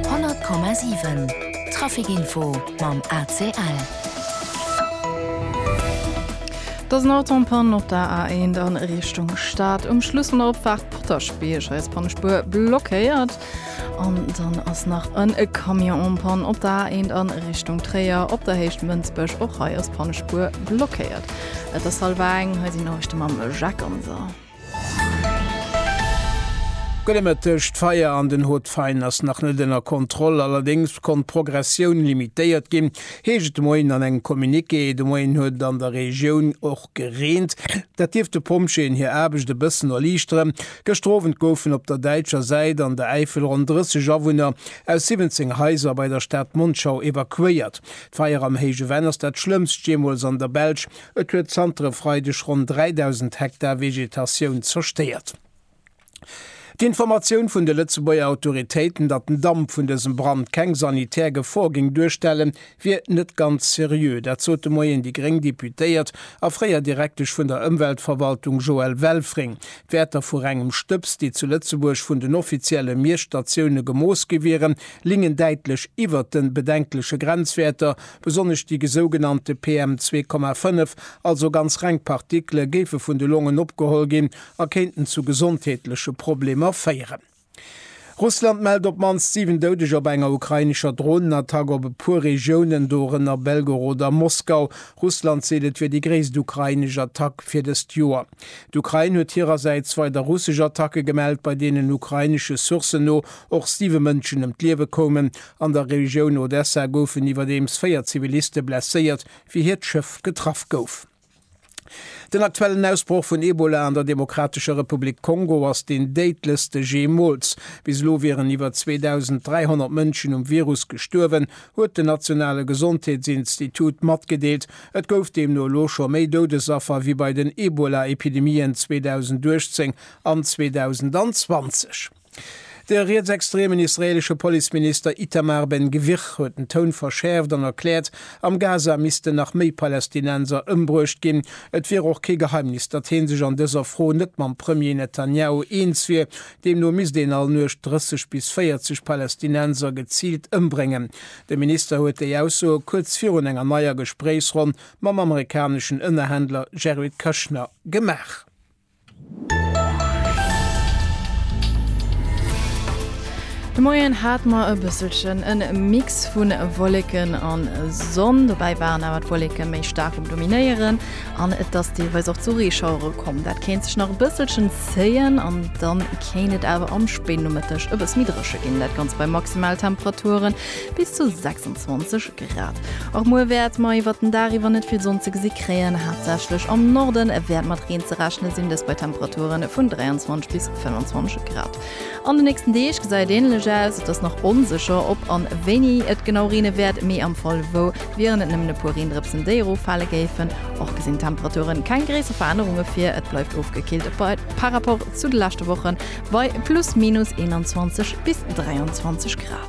100,7 Trafic Info mam ACL. Et ass en Auto en Panne op der A1 a Richtung Stad um Schluss vun der Opfaart Potaschbierg. Hei ass d'Pannespuer blockéiert. An dann ass nach en Camion en Panne op der A1 a Richtung Tréier op der Héicht Mënsbech. Och hei ass d'Pannespuer blockéiert. Et ass hallef eng. Hei sinn d'Noriichte mam Jacques Ganser. Gudde Mëtteg, D'Feier an den Haut Fain ass nach net ënner Kontroll, allerdéngs konnt d'Progressioun limitéiert ginn, heescht et de Moien an engem Communiqué. De Moien huet et an der Regioun och gereent, dat dierft de Pompjeeën hir Aarbecht e bëssen erliichteren. Gëschter Owend goufen op der däitscher Säit an der Äifel ronn 30 Awunner aus 17 Haiser bei der Stad Monschau evakuéiert. D'Feier am Héije Venn ass dat Schlëmmst jeemools an der Belsch Et huet zanter e Freideg ronn 3.000 Hektar Vegetatioun zerstéiert. D'Informatioun vun de Lëtzebuerger Autoritéiten, datt den Damp vun dësem Brand keng sanitär Gefor géing duerstellen, wier net ganz seriö. Dat sot de Moien déi gréng Deputéiert a fréier Direktesch vun der Ëmweltverwaltung Joelle Welfring. D'Wäerter vu rengem Stëbs, déi zu Lëtzebuerg vun den offizielle Miesstatioune gemooss gi wieren, lingen däitlech iwwert de bedenkleche Grenzwäerter, Besonnesch déi gesougenannte PM 2,5, also ganz reng Partikele, géife vun de Longen opgeholl ginn a kéinten zu gesondheetleche Problemer féieren. Russland mellt op d'mannst 7 Doudeger bei enger ukrainescher Dronenattack op e puer Regiounen, dorënner Belgorod a Moskau. Russland seet, et wier déi gréisst ukrainesch Attack fir dëst Joer. D'Ukrain huet hirersäits weider russesch Attacke gemellt, bei deenen ukrainesche Sourcen no och siwe Mënschen ëm d'Liewe koumen An der Regioun Odessa goufen iwwerdeems véier Ziviliste blesséiert, wéi hiert Schëff getraff gouf. Den aktuellen Ausbroch vun Ebola an der Demokratescher Republik Kongo ass deen déidlechste jeemools. Bis elo wieren iwwer 2.300 Mënschen um Virus gestuerwen, huet den nationale Gesondheetsinstitut matgedeelt. Et gouf deemno elo scho méi Doudesaffer wéi bei den Ebola-Epidemien 2018 an 2020. De rietsextremen israeelesche Policeminister Itamar Ben-Gvir huet den Toun verschäerft an erkläert, am Gaza missten nach méi Palästinenser ëmbruecht ginn. Et wier och kee Geheimnis, datt hee sech an dëser Fro net mam Premier Netanjahu eens wier. Deemno misst een all Nuecht 30 bis 40 Palästinenser geziilt ëmbréngen. De Minister huet déi Aussoe kuerz virun enger neier Gespréichsronn mam amerikaneschen Ënnerhändler Jared Kushner gemaach. De Moien hat mer e bësselchen e Mix vu Wolleken a Sonn. Dobäi waren awer d'Wolleke méi staark um Dominéieren an et ass deelweis och zu Reeschauere komm. Dat kéint sech nach e bësselchen zéien an da kéint et awer am spéiden Nomëtteg e bësse méi dréche ginn. Dat Ganzt bei Maximaltemperaturen bis zu 26 Grad. Och muer wäert mer iwwert den Dag iwwer net vill Sonn ze gesi kréien, haaptsächlech am Norde wäert mat Reen ze rechne sinn, dëst bei Temperature vun 23 bis 25 Grad. An de nächsten Deeg gesäit et änlech aus, et ass nach onsécher, ob an wéini et genau reene wäert, mee am Fall wou wieren et nëmmen e puer Reendrëpsen, déi eroffale géifen. Och gesinn d'Temperature keng gréisser Verännerunge vir, et bleift ofgekillt par rapport zu de leschte Wochen bei plus minus 21 bis 23 Grad.